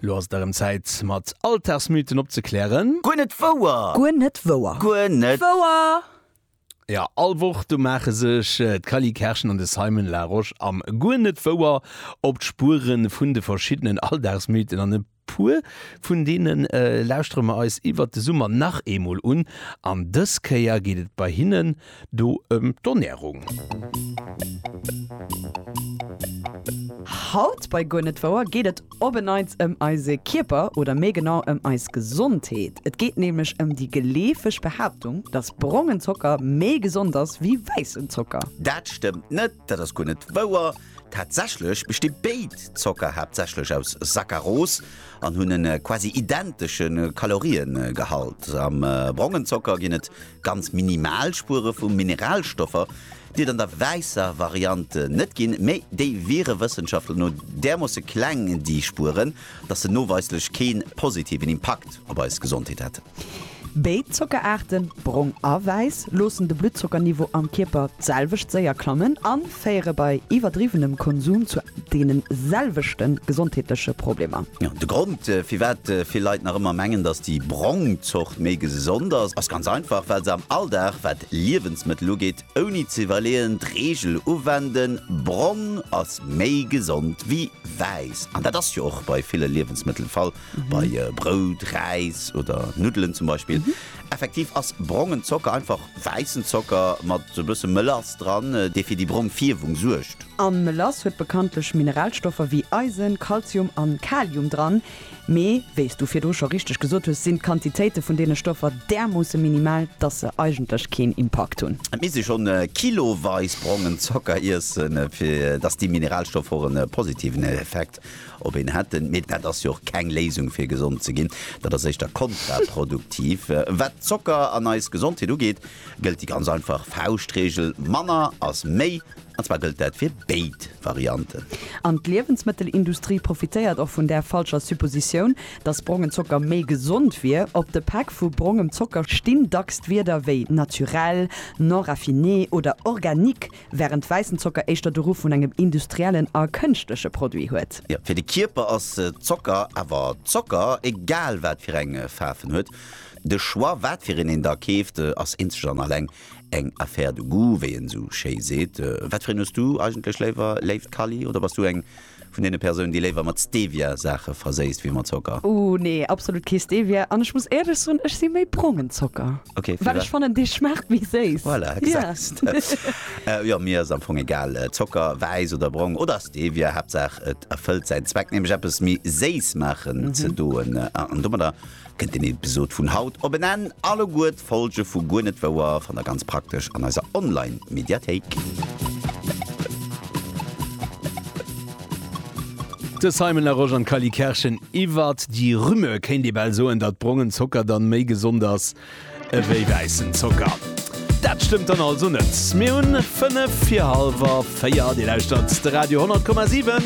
Lo ass et erëm Zäit, mat Alltagsmythen opzeklären. Guer net wouer! Guer net wouer! Guer net wouer! Ja, all Woch do maache sech d'Cally Kerschen an de Simon Larosche am Guer net wouer op d'Spuere vun de verschiddenen Alldagsmythen an e Puer vun deene lauschtere mer eis iwwert de Summer nach eemol un an dës Kéier geet et bei hinnen do ëm d'Ernärung. Haut bei Guer net wouer geet et op en Neits ëm eise Kierper oder méi genau ëm eis Gesondheet. Et geet nämlech ëm déi geleefeg Behaaptung, dass brongen Zocker méi gesond ass wéi wäissen Zocker. Dat stëmmt net, dat ass guer net wouer. Tatsächlech besti béid Zocker haaptsächlech aus Saccaros an hunn e quasi identesche Kaloriegehalt. Am brongen Zocker ginn et ganz minimal Spuere vu Mineralstoffer, déi et an der wäisser Variant net ginn, mee déi wiere Wëssenschaftler no därmoosse kleng, déi Spueren, dass se noweislech kee positiven Impakt op eis Gesondheet hätten. Béid Zockeraarten, brong a wäiss, loossen de Bluttzockerniveau am Kierper d'selwecht séier klammen a féiere bei iwwerdriwwenem Konsum zu deene selwechte gesondheetleche Problemer. De Grond, firwat vill Leit nach ëmmer mengen, dass déi brong Zort méi gesond ass, ass ganz einfach, well se am Alldag, wat Liewensmëttel ugeet, Ouni ze iwwerleeën d'Reegel uwenden, bronn ass méi gesond wéi wäiss. An dat ass jo och bei ville Liewensmëttel de Fall, bei Brout, Räis oder Nuddelen zum Beispill. Effektiv ass brongen Zocker einfach wäissen Zocker mat e bësse Mélass dran, dee fir déi brong Fierwung suergt. A Mélass huet bekanntlech Mineralstoffer wéi Eisen, Kalzium an Kalium dran, Mee, wéi s du virdru scho richteg gesot hues, sinn d'Quantitéite vun deene Stoffer därmoosse minimal, dass se eigentlech keen Impakt hunn. Et misst ee schonn kiloweis brongen Zocker iessen, fir dass déi Mineralstoffer och e positiven Effekt op een hätten. Mee dat ass jo och keng Léisung, fir gesond ze ginn. Dat ass éischter kontraproduktiv. Wat d'Zocker an eis Gesondheet ugeet, gëllt déi ganz einfach Fauschtreegel, Manner ass méi. An zwar gëllt dat fir béid Varianten. An d'Liewensmëttelindustrie profitéiert och vun där falscher Suppositioun, datt brongen Zocker méi gesond wier. Op de Päck vu brongem Zocker stinn dacks d'Wierder wéi naturel, non raffiné oder organique, wärend wäissen Zocker éischter de Ruff vun engem industriellen a kënschtleche Produit huet. Jo, fir de Kierper ass Zocker awer Zocker, egal wat fir eng Faarf en huet. De Choix, wat fir een een da keeft, ass eenzeg an alleng Eng affaire de goût, wéi een esou schéi seet. Wat fir een hues du eigentlech léiwer, léift Kally? Oder bass du eng vun deene Persounen, déi léiwer mat Stevia Saache verséisst wéi mat Zocker? Ooh nee, absolut kee Stevia. An ech muss éierlech soen, ech si méi brongen Zocker, Ok, fir well ech wat? fannen, dee schmaacht méi séiss. Voilà, Yeah. gesäis de. Jo, mir ass am Fong egal, Zocker, wäiss oder brong, oder Stevia, Haaptsaach et erfëllt säin Zweck, nämlech eppes méi séiss maachen ze doen. An domadder Kënnt den Episod vun haut op en Enn, alleguer d'Folge vu Guer net wouer fannt der ganz praktesch an eiser Online Mediathéik. De Simon Larosche an d'Kylie Kerschen iwwert déi Rumeur, kéint ee bal soen, datt brongen Zocker dann méi gesond ass ewéi wäissen Zocker. Dat stëmmt dann also net. Mir hunn 5 vir halwer 4. Dir lauschtert de Radio 10,7.